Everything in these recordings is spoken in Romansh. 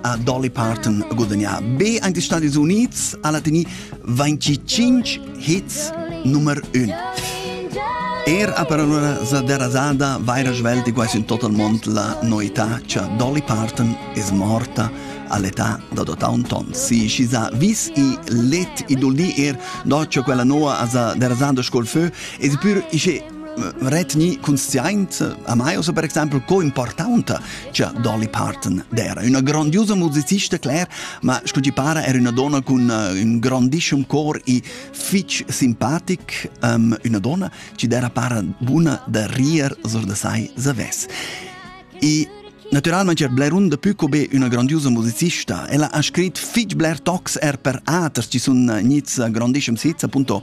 a Dolly Parton a gudagnà be anche gli Stati Uniti alla teni 25 hits numero 1. Er a parola za derasada vaira svelti quasi in total mont la noità c'ha Dolly Parton es morta all'età da dotà un ton. Si ci sa vis i let i duldi er doccio quella noa a sa derasada scol feu e si pur isce retni consciaint a mai osa per exempel co importanta Già Dolly Parton era üna grandiusa musicista, Claire, ma scu ti para era üna donna cun uh, ün grandissem cor e fich simpatic, um, üna donna chi d'era para buna da rier sur da sai zavess. E Naturalmente c'è Blerun de più be una grandiosa musicista. Ella ha scritto fich bler tocs er per aters, ci sono niz grandissimi sits, appunto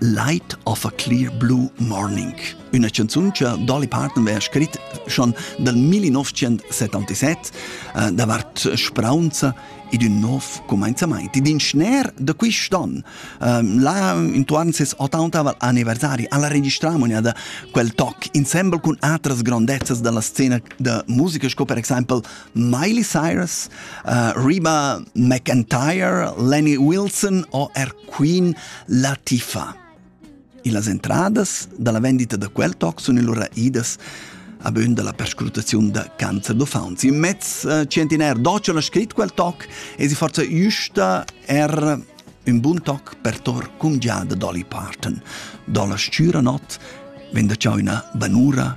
Light of a Clear Blue Morning, üna chanzun cha Dolly Parton vea scrit schon dal 1977 eh, davart spraunza ed ün nov cumainzamaint. Ed in schner da quist'on, ehm, là intuorn ses 80 anniversari, alla registramonia da quel toc insemble cun atras grondezzas dalla scena da musica sco per exaimpel Miley Cyrus, uh, Reba McIntyre, Lenny Wilson o er Queen Latifa. Las entradas dalla vendita da quel toc sun allura idas a bön dalla perscrutaziun da cancer d'uffants. In mezz eh, centinair d'occian ha scrit quel toc e si forza giusta er un bun toc per tor cumgiada Dolly Parton. Dolla stüra not venda ciao üna banura